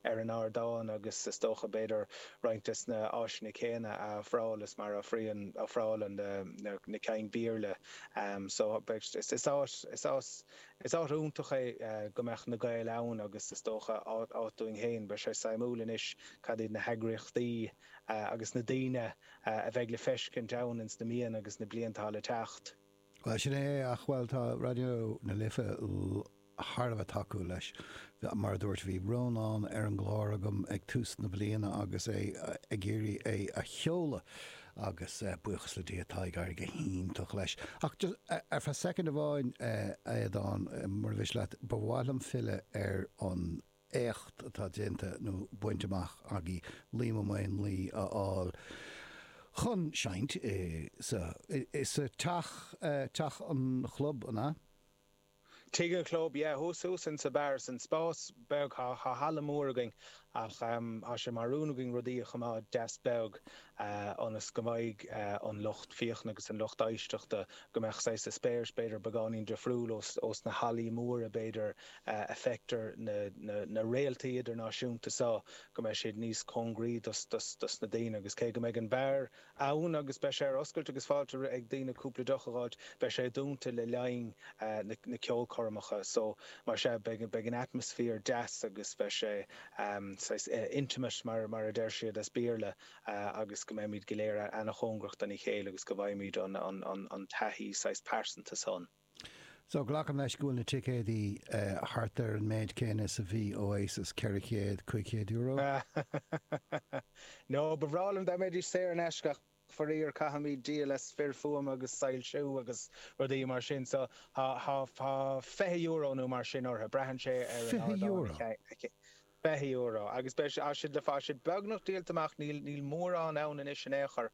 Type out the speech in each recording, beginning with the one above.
ar an ardán agus is dócha b'fhéidir roinnt des na áiseanna céanna a ofráil is mar a ofrálann, ofrálann na, na, na cinn Béarla. So, is, is áit, is áit, is áit iontach é go mbeadh na Gaeil ann agus is dócha áit, áit dúinn féin. Beidh sé suimiúil anois cad iad na heagraíochtaí agus na daoine a bheidh le feiscint ann ins na míonna agus na blianta atá le teacht. Bhuel, sin é, ach, bhuel, tá Raidió na Life thar a bheith tacúil leis. Mar a dúirt, bhí Rónán ar an gclár agam ag tús na bliana agus é ag iarraidh é a sheoladh agus buíochas le Dia tá ag éirí go hiontach leis. Ach just, ar feadh soicind amháin, a Aodáin, mura mhiste leat, ba mhaith liom filleadh ar an, éacht atá déanta nó bainte amach agaibh Liam Ó Maonlaí a fháil chun seinnt sa, sa teach, teach an chlub, an ea? Tigh an chlub, yeah, thuas, thuas in sa bheár, san spás beag, thá halla mór againn ach thá sé mar rún againn rudaí a choimeád deas beag. ionas go mbeidh an lucht féachana agus an lucht éisteachta, go mbeadh saghas eispéireas b'fhéidir beagáinín difriúil ós na hallaí móra b'fhéidir a fheictear na réaltaí idirnáisiúnta seo, go mbeidh siad níos cóngaraí dos na daoine agus cé go mbeidh an beár ann agus beidh sé ar oscailt agus fáilte ag daoine cúpla deoch a dh'fháilt, beidh sé dúnta le linn na ceolchoirmeacha so mar sin, beidh an atmaisféar deas agus beidh sé. am, saghas intimate mar mar a deir siad as Béarla agus go mbeimid go léir ana-chóngarach dona chéile agus go bhfaighimid an an an taithí saghas pearsanta san. So, glacaim leis go bhfuil na ticéidí thart ar an méid céanna is a bhí Oasis, ceithre chéad, cúig chéad euro? Sea, no, ba bhreá liom dá mbeidís saor in aisce ach. Faraor, caithfimid díol as fir fuaime agus soilsiú agus rudaí mar sin so thá fiche euro nó mar sin orthu. Braitheann sé ar... Fiche euro? Fiche euro agus thá siad le fáil. Thá siad beagnach díolta amach, níl níl mórán ann anois in aon chor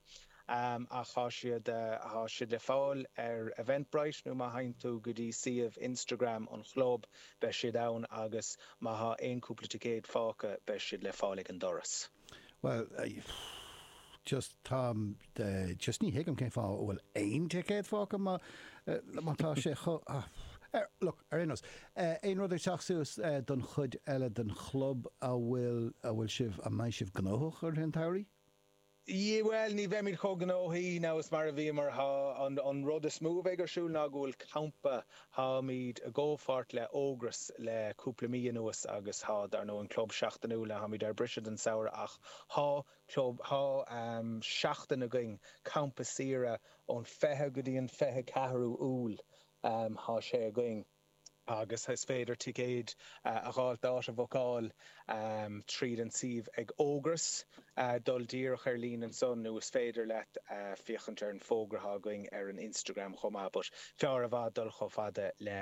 ach thá siad thá siad le fáil ar Eventbrite nó má théann tú go dtí suíomh Instagram an chlub beidh siad ann agus má thá aon cúpla ticéad fágtha beidh siad le fáil ag an doras. Bhuel, just, táim, just ní thuigim cén fáth a bhfuil aon ticéad fágtha má, má tá sé chomh, ah, look, ar aon nós, aon rud ag teacht suas don chuid eile den chlub a bhfuil, a bhfuil sibh, a mbeidh sibh gnóthach i rith an tsamhraidh? Yeah, bhuel, ní bheimid chomh gnóthaí now is mar a bhíomar, tá, an, an rud is mó a bheidh ar siúl ná go bhfuil campa Tháimid i gcomhpháirt le Ógras le cúpla mí anuas agus thá, dar ndóigh, an club seachtainiúil tháimid ar briseadh don samhradh ach thá club, thá seachtain againn, campa saoire ón 20 go dtí an 24ú Iúil, thá sé againn agus is féidir ticéid a dh'fháilt, áit a bhookáil tríd an suíomh ag Ógras, dul díreach ar líne ansan nó is féidir leat féachaint ar an bhfógra atá againn ar an Instagram chomh maith but fearr i bhfad dul chomh fada le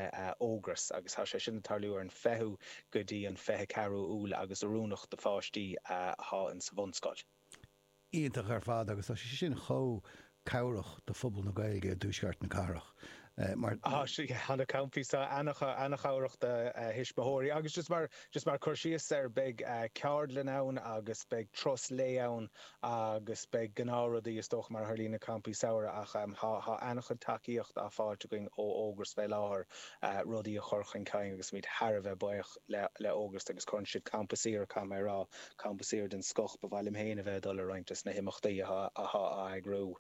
Ógras agus tá sé sin ag tarlú ar an 20ú go dtí an 24ú Iúil agus oiriúnach do pháistí atá insa bhunscoil. iontach ar fad agus tá sé sin chomh cabhrach do phobal na Gaeilge i dtuaisceart na cathrach mar. Tá na campaí seo an-chabhrach do thuismitheoirí agus just mar just mar cur síos ar beidh ceardlann ann agus beidh turas lae ann agus beidh gnáth rudaí is dócha mar a tharlaíonn i campaí samhraidh ach tá tá an-chuid tacaíocht á fáilt againn ó Ógras fé láthair rudaí a chur chun cinn agus táimid thar a bheith buíoch le Ógras agus cuireann siad campa samhraidh, caithfidh mé a rá, campa samhraidh den scoth. Ba mhaith liom féin a bheith ag dul ar roinnt des na himeachtaí atá á eagrú.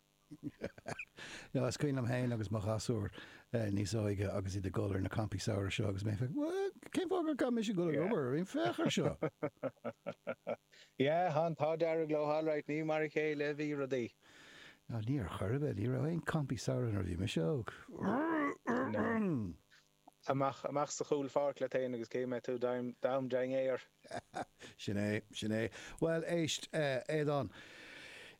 Is cuimhin liom féin agus mo ghasúr níos óige agus iad ag dul ar na campaí samhraidh seo agus mé ag féachaint, bhuel, cén fáth gur caithfidh mise dul ag obair araon, féach ar seo! Yeah, an t-ádh dearg leo alright, ní mar a chéile a bhí rudaí. Ní ar chor ar bith, ní raibh aon campaí samhraidh nuair a bhí mise óg. amach, amach sa chúl pháirc leat féin agus cé mbeidh tú, d'am, dein é ar. Sin é, sin é. Bhuel, éist, Aodán,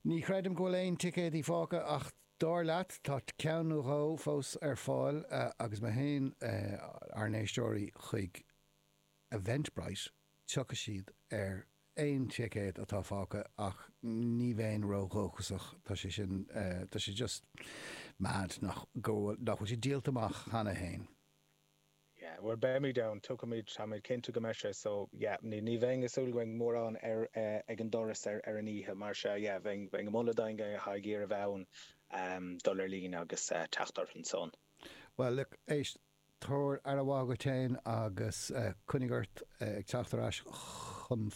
ní chreidim go bhfuil aon ticéadaí fágtha ach dar leat, tá ceann nó dhó fós ar fáil agus má théann ár n-éisteoirí chuig Eventbrite, tiocfaidh siad ar aon ticéad atá fágtha ach ní bheinn ró-dhóchasach, tá sé sin, tá sé just mad nach bhfuil sé díolta amach cheana féin. Yeah, bhuel beimid ann, tuigimid, táimid cinnte go mbeidh sé, so yeah, ní bheinn ag súil go mbeidh mórán ag an doras ar an oíche mar sea, yeah, bheinn ag moladh d'éinne atá ag iarraidh a bheith ann dul ar líne agus teacht orthu and so on. Bhuel look, éist, tabhair aire mhaith dhuit féin agus coinnigh ort ag teacht ar ais chugainn.